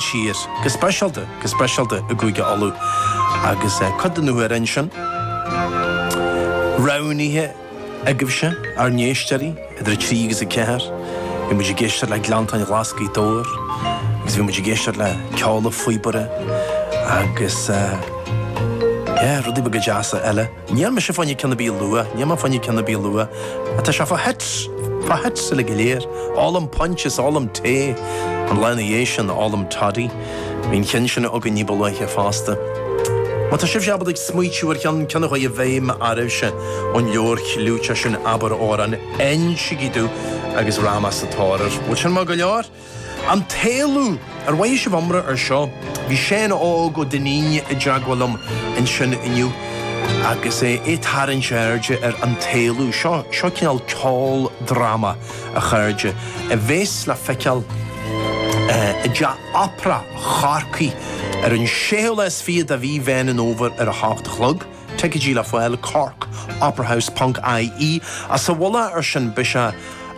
síos, go speisialta, go speisialta i gCúige Uladh agus cuid de na hamhráin sin roghnaithe agaibhse, ár n-éisteoirí, idir 3 agus 4, bhí muid ag éisteacht le Gleanntáin Ghlas' Ghaoth Dobhair agus bhí muid ag éisteacht le Ceol an Phíobaire agus, yeah, rudaí beaga deasa eile. Níl mise fáinne ceann a bí luath, níl mé fáinne ceann a bí luath, ach tá sé fá thoit, fá thoit uilig go léir. Ólaim puins is ólaim tae, an lá ina dhiaidh sin, ólaim toddy. Bhí an ceann sin againn ní ba luaithe fosta. Má tá sibhse, abair, ag smaoitiú ar cheann, ceann a chuaigh i bhfeidhm araibhse ón leabhar chliúiteach sin Abair Amhrán, insígí domh agus rachaidh mé sa tóir air. Bhfuil sin maith go leor? An tÉalú! Ar mhothaigh sibh iomrá ar seo? Bhí Seán Óg Ó Duinnín i dteagmháil liom ansin inniu agus é ag tarraingt airde ar An tÉalú. Seo, seo cineál ceoldráma, a chairde, a bhéas le feiceáil i dTeach Opera Chorcaí ar an 6ú lá is fiche de Mhí Mheán an Fhómhair ar a h-ocht a chlog. Ticeidí le fáil, corkoperahouse ponc IE. Sa mhullach ar sin, beidh sé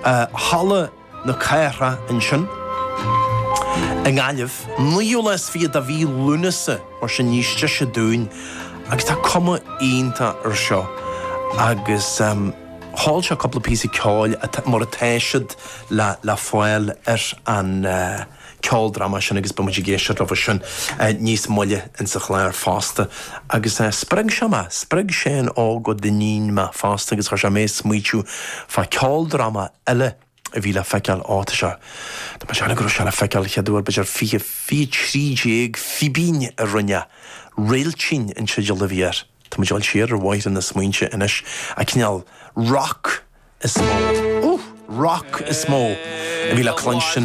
i Halla. na Cathrach ansin i nGaillimh, 9ú lá is fiche de mhí Lúnasa, mar sin níos deise dúinn agus tá cuma iontach ar seo agus sheol sé cúpla píosa ceoil mar atá siad le fáil ar an ceoldráma sin agus beimid ag éisteacht leo sin níos moille in sa chlár fosta agus spreag sé mé, spreag Seán Óg Ó Duinnín mé fosta agus chuir sé mé ag smaoitiú fá ceoldráma eile a bhí le feiceáil áit seo. Tá mé ag déanamh go raibh sé le feiceáil chéad uair b'fhéidir 2013, Fíbín a rinne é, Réiltín an teideal a bhí air. Tá mé ag dul siar ar bhóithre na smaointe anois. An cineál rock is mó, uh! rock is mó a bhí le cluinstin.